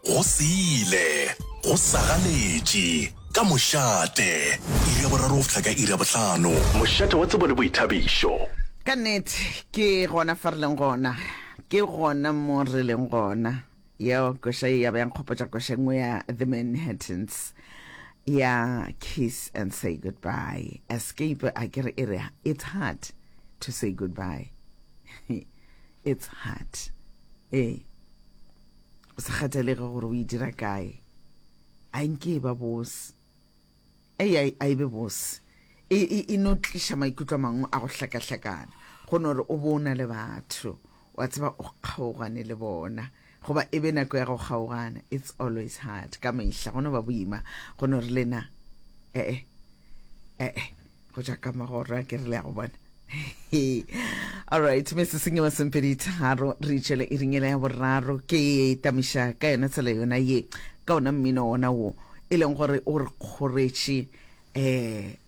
Go se ile, go sa ganetše, ka mošate. Iri ya boraro go fihla ka iri ya bohlano. Mošate wa tsebo le boithabišo. Ka nnete, ke gona fa re leng gona. Ke gona mo re leng gona. Yeo koša ye ya ba ya nkgopotša koša e nngwe ya The Manhattans ya Kiss and Say Goodbye. Escape a ke re e re, It's hard to say goodbye. It's hard. Ee. Go sa kgathalege gore o e dira kae. A nke e ba bose. Ei, a, a e be bose. E, e, e no tliša maikutlo a mangwe a go hlakahlakana. Go no re o bo o na le batho. Wa tseba o kgaogane le bona. goba e be nako ya go kgaogana it's always hard ka mehla go no ba boima go no re lena ee ee go ja ka magoro a ke re le ya go bona alright mese sengwe sempedi tharo re itšhele e ringele ya boraro ke e tamiša ka yona tsela yona ye ka ona mmino ona wo e leng gore o re kgoretše um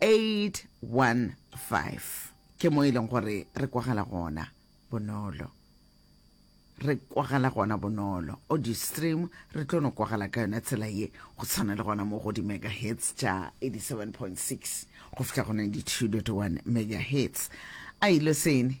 815 ke mo e leng gore re kwagala gona bonolo re kwagala gona bonolo audio stream re tlo no kwagala ka yona tsela ye go tshwana le gona mo go di-megahertz tša 87.6 go fihla go 92.1 megahertz a ile sene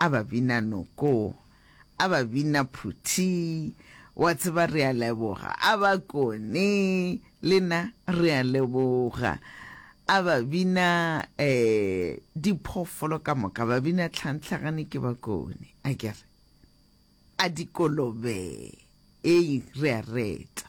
a ba bina noko, a ba bina phuthi, wa tseba re a leboga, a ba kone, le na re a leboga, a ba bina um diphoofolo ka moka, ba bina tlhantlhagane ke ba kone, a ke re, a dikolobe, ee, re a reta.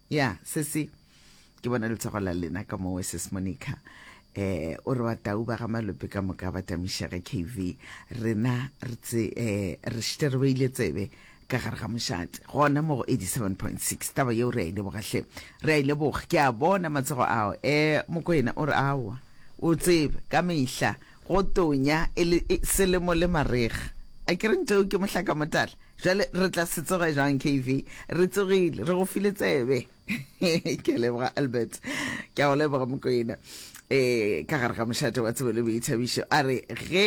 ya sesi ke bona letsego la lena ka mowe ses monica eh o re batau ba ga malope ka moka ba tamišege kv rena re tse eh re šite re beile tsebe ka gare ga mošate gona mo go 87.6 taba yeo re a ile bogahle re a ile bog ke a bona matsego ao eh mokoena o re awa o tsebe ka mehla Go tonya e le selemo le marega. A ke re ntoo ke mohlakamotala? Jwale re tla se tsoge jwang KV? Re tsogile, re go file tsebe. Ke a leboga Albert. Ke a go leboga Mokoena. E, ka gare ga mošate wa tsebo le boithabišo, a re ge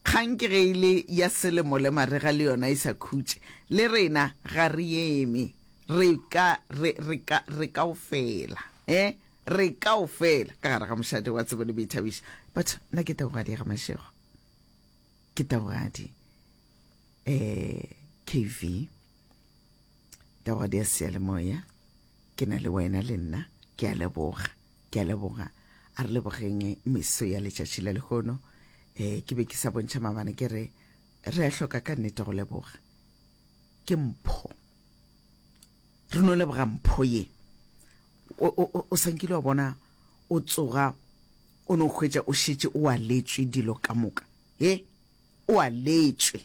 kgang ke ge e le ya selemo le marega le yona e sa khutše, le rena ga re eme, re ka, re, re ka, re kaofela. E, Re kaofela ka gare ga mošate wa tsebo le boithabišo. Batho, nna ke Taugadi ya ga Mashego. Ke Taugadi. Eh, KV. Taugadi ya Seyalemoya. Ke na le wena le nna. Ke a leboga. Ke a leboga. A re lebogeng meso ya letšatši la lehono. Eh, ke be ke sa bontšha mabana ke re, re a hloka ka nnete go leboga. Ke mpho. re no leboga mpho ye o sankile wa bona o tsoga o no hwetša o šetše o aletšwe dilo ka moka e o aletšwe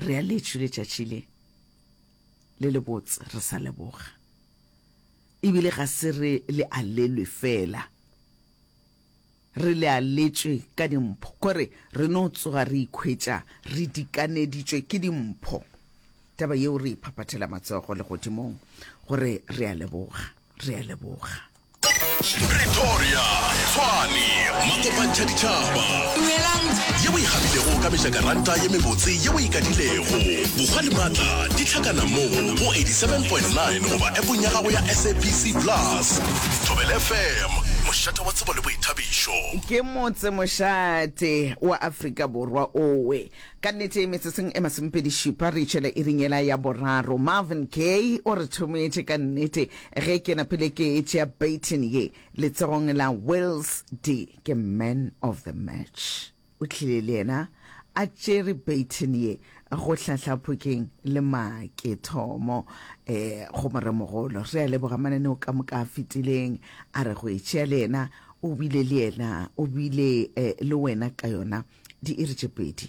re aletšwe letšatši le le lebotse re sa leboga ebile ga se re le alelwe fela Re lealetšwe ka dimpho gore re no tsoga re ikhwetša re dikaneditšwe ke dimpho. Taba yeo re e phaphathela matsogo legodimong gore re a leboga, re a leboga. Pretoria, Tshwane, Makopantšha Ditšhaba. Dumelang. Yeo e kgabilego ka mejakaranta ye mebotse yeo e ikadilego. Bokgwa le matla di hlakana mo go 87.9 goba appong ya gago ya SABC Plus. Thobela FM, mošate wa tshedimošo. tsebo le boithabišo. Ke motse mošate wa Afrika Borwa owe. Ka nnete, metseseng e masomepedi šupa re itšwela iring yela ya boraro. Marvin Gaye o re thometše ka nnete ge ke napile ke tšea baton ye letsogong la Wills. Dee ke man of the match. O tlile le yena a tšere baton ye go hlahla Phokeng le Makethomo um go moremogolo. Re a leboga mananeo ka moka a fetileng, a re go e tšea le yena. O bile le yena, o bile um le wena ka yona diiri tše pedi.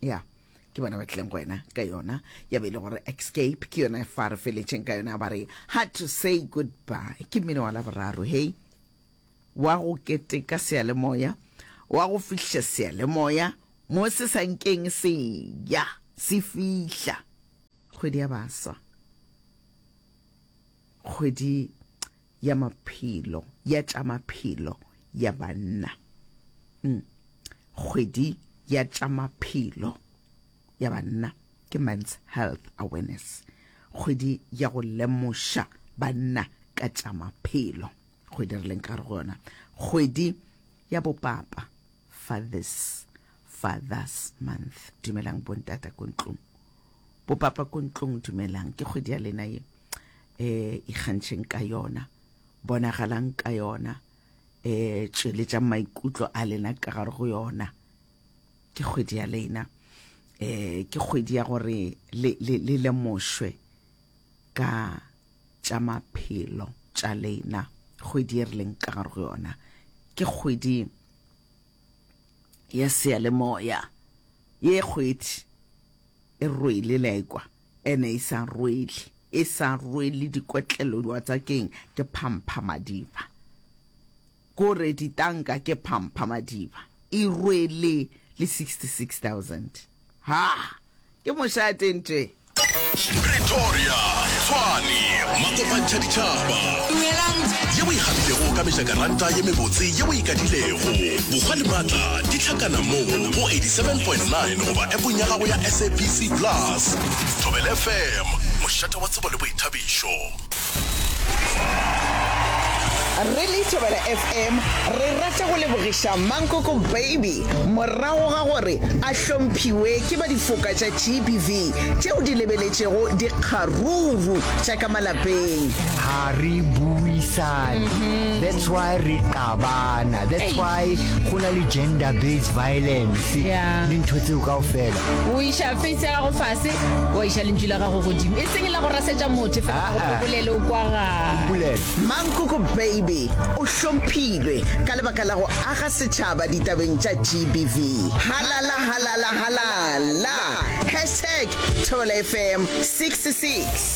ya yeah ke bona ba tlileng go wena ka yona ya be e le gore escape ke yona e fa re feletšeng ka yona ba re hard to say goodbye ke mmino wa laboraro hei wa go keteka sealemoya wa go fihla sealemoya mo se sa nkeng se ya se fihla kgwedi ya baswa kgwedi ya maphelo, ya tša maphelo ya banna. Mm. Kgwedi ya tša maphelo ya banna ke Men's Health Awareness. Kgwedi ya go lemoša banna ka tša maphelo. Kgwedi re leng ka re go yona. Kgwedi ya bopapa, Fathers, Fathers Month. Dumelang bontata ko ntlong. Bopapa ko ntlong dumelang. Ke kgwedi ya lena ye. eh ikgantšheng ka yona bonagalang ka yona eh tšweletša maikutlo a lena ka gare go yona ke kgwedi ya lena eh ke kgwedi ya gore le le le lemošwe ka tša maphelo tša lena kgwedi e re leng ka gare go yona ke kgwedi ya seyalemoya ye kgwedi e rwele la ekwa E ne e sa rwele, e sa rwele dikotlelo diwatsakeng, ke phamphamadiba. Ko re ditanka ke phamphamadiba. E rwele le 66,000. Ha! Ke mošate nte. Pretoria, Tshwane, Makopantsha Ditšhaba. Dumelang. Ye o e gabilego ka mejakaranta ye mebotse ye o e kadilego. Bokgwa le maatla di hlakana mo go 87.9 goba appong ya gago ya SABC Plus. Thobela FM, mošate wa tsebo le boithabišo. Re le Thobela FM re rata go lebogiša Mankoko Baby morago ga gore a hlomphiwe ke ba difoka tša GBV tšeo di lebeletšego dikgaruru tša ka malapeng. ha re buisane mm-hmm. that's why re qabana that's why go na le gender based violence le ntho tseo kao fela O iša feisi ya gago fase, wa iša lentšu la gago godimo. E seng la go rasetša motho, fela ga go Ah-ah. phobolele o kwa gae. Mpulele. Mankoko Baby o hlomphilwe ka lebaka la go aga setšhaba ditabeng tša GBV. Halala halala halala! Hashtag Thobela FM 66.